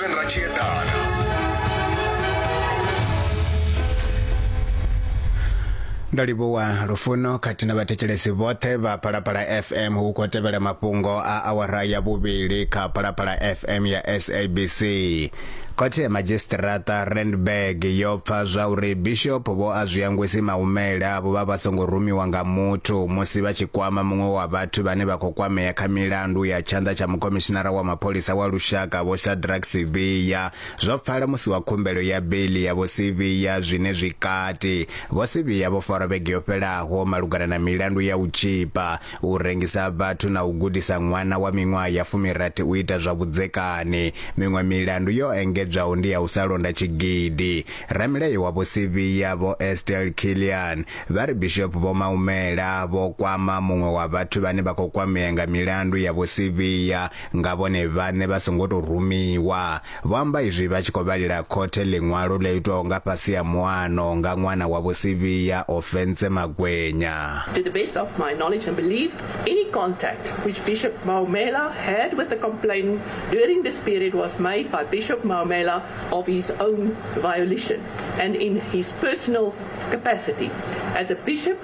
Durban ra tshi eḓana ndo livhuwa lufuno khathihi na vhathetshelesi vhoṱhe vha phalaphala fm hu khou tevhela mafhungo a awara ya vhuvhili kha phalaphala fm ya sabc khothe ya madzhisiṱiraṱa randburg yo pfa zwa uri bishop vho a zwi angwesi maumele avho vha vha songo rumiwa nga muthu musi vha tshi kwama muṅwe wa vhathu vhane vha khou kwamea kha milandu ya tshanḓa tsha mukhomishinara wa mapholisa wa lushaka Vho Shadrack Sibiya, Zwo pfala musi wa khumbelo ya beiḽi ya Vho Sibiya zwine zwi kati. Vho Sibiya vho farwa vhege yo fhelaho malugana na milandu ya u tzhipa, u rengisa vhathu na u gudisa ṅwana wa miṅwaha ya fumirathi u ita zwa vhudzekani. Miṅwe milandu yo engedzwaho ndi ya u sa londa tshigidi. Ramilayo wa Vho Sibiya, Vho Estelle Killian, vha ri Bishop Vho Maumela vho kwama muṅwe wa vhathu vhane vha khou kwamea nga milandu ya Vho Sibiya nga vhone vhaṋe vha songo tou rumiwa. Vho amba izwi vha tshi khou vhalela khothe ḽiṅwalo ḽo itwaho nga fhasi ha muano nga ṅwana wa Vho Sibiya, Ofentse Magwenya. To the best of my knowledge and belief, any contact which Bishop Maumela had with the complainant during this period was made by Bishop Maumela of his own volition and in his personal capacity as a bishop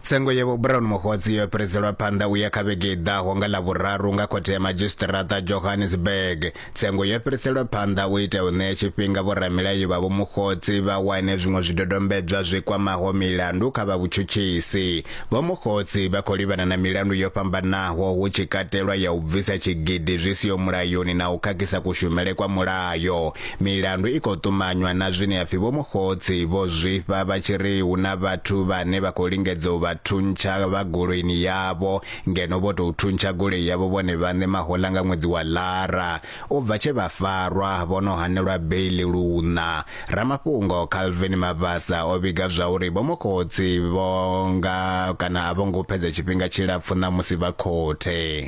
Tsengo ya Vho-Brown Mokgotsi yo fhiriselwa phanḓa u ya kha vhege i ḓaho nga Ḽavhuraru nga khothe ya madzhisiṱiraṱa Johannesburg. Tsengo yo fhiriselwa phanḓa u itela u ṋea tshifhinga vhoramilayo vha Vho-Mokgotsi vha wane zwiṅwe zwidodombedzwa zwi kwamaho milandu kha vha vhutshutshisi. Vho-Mokgotsi vha khou livhana na milandu yo fhambanaho hu tshi katelwa ya u bvisa tshigidi zwi siho mulayoni na u khakhisa kushumele kwa mulayo. Milandu i khou ṱumanywa na zwine ya pfi vhomukhotsi vho zwifha vha tshi ri hu na vhathu vhane vha khou lingedza u vha thuntsha vha goloini yavho ngeno vho tou thuntsha goloi yavho vhone vhaṋe mahoḽa nga ṅwedzi wa Lara. U bva tshe vha farwa, vho no hanelwa beiḽi luṋa. Ramafhungo Calvin Mabasa o vhiga zwauri vhomukhotsi vho nga kana a vho ngo fhedza tshifhinga tshilapfu ṋamusi vha khothe.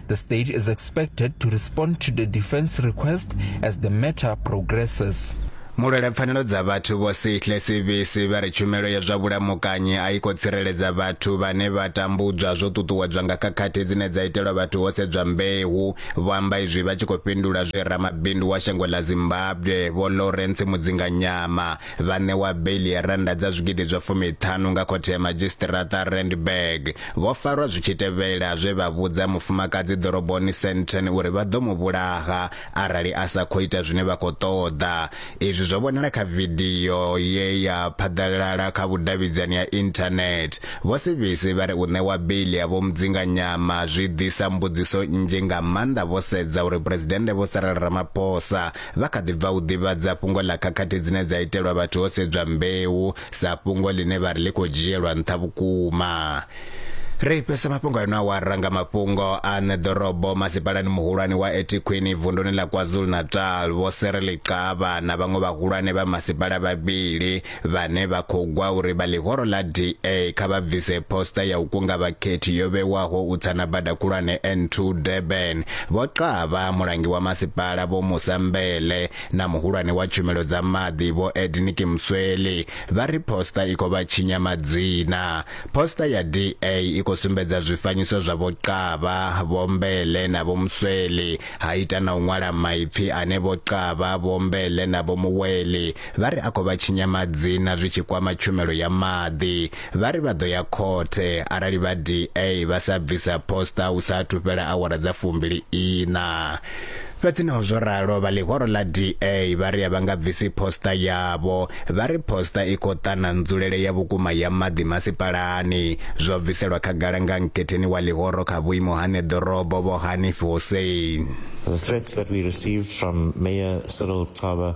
The state is expected to respond to the defense request as the matter progresses. mulwela pfanelo dza vhathu vho sihle sibisi vha ri tshumelo ya zwa vhulamukanyi a i khou tsireledza vhathu vhane vha tambudzwa zwo ṱuṱuwedzwa nga khakhathi dzine dza itelwa vhathu ho sedzwa mbeu vho amba izwi vha tshi khou fhindula zwe ramabindu wa shango ḽa zimbabwe vho lawrence mudzinganyama Vha ṋewa beiḽi ya rannda dza zwigidi zwa fumiṱhanu nga khothe ya madzhisiṱiraṱa a Randburg. Vho farwa zwi tshi tevhela zwe vha vhudza mufumakadzi ḓoroboni Sandton uri vha ḓo mu vhulaha arali a sa khou ita zwine vha khou ṱoḓa. Izwi zwo vhonala kha vidio ye ya phaḓalala kha vhudavhidzani ha Internet. Vho Sibisi vha ri u ṋewa beiḽi ya Vho Mudzinganyama zwi ḓisa mbudziso nnzhi nga maanḓa vho sedza uri Phresidennde Vho Cyril Ramaphosa Vha kha ḓi bva u ḓivhadza fhungo ḽa khakhathi dzine dza itelwa vhathu ho sedzwa mbeu sa fhungo ḽine vha ri ḽi khou dzhielwa nṱha vhukuma. Ri fhesa mafhungo a ino awara nga mafhungo a ṋe ḓorobo masipalani muhulwane wa Etikhwini vunduni ḽa KwaZulu-Natal Vho Serele Xaba na vhaṅwe vhahulwane vha masipala vhavhili Vhane vha khou gwa uri vha ḽihoro ḽa DA kha vha bvise poster ya u kunga vhakhethi yo vhewaho u tsa na bada khulwane N2 Durban, Vho Xaba, mulangi wa masipala Vho Musa Mbele na muhulwane wa tshumelo dza maḓi Vho Ednick Msweli vha ri poster i khou vha tshinya madzina. Poster ya DA i khou sumbedza zwifanyiso zwa Vho Xaba, Vho Mbele na Vho Msweli ha ita na u ṅwala maipfi ane Vho Xaba, Vho Mbele na Vho Muweli Vha ri a khou vha tshinya madzina zwi tshi kwama tshumelo ya maḓi. Vha ri vha ḓo ya khothe arali vha DA vha sa bvisa poster hu sa athu fhela awara dza fumbili iṋa. Fhedzi naho zwo ralo, vha ḽihoro ḽa DA vha ri a vha nga bvisi poster yavho. Vha ri poster i khou ṱana nzulele ya vhukuma ya maḓi masipalani. Zwo bviselwa khagala nga nkhetheni wa ḽihoro kha vhuimo ha ṋeḓorobo Vho Hanif Hussein. The threats that we received from Mayor Cyril Xaba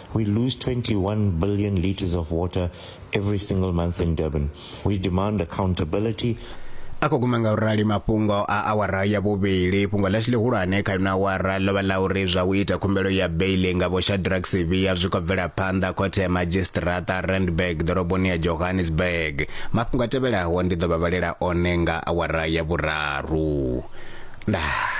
We lose 21 billion litres of water every single month in Durban. We demand accountability. a khou guma nga u rali mafhungo a awara ya vhuvhili fhungo ḽashu ḽihulwane kha ino awara ḽo vha ḽa uri zwa u ita khumbelo ya beili nga vho shadrack sivia zwi khou bvela phanḓa khothe ya madzhisiṱiraṱa randburg ḓoroboni ya johannesburg mafhungo a tevhelaho ndi ḓo vha vhalela one nga awara ya vhuraru ndaa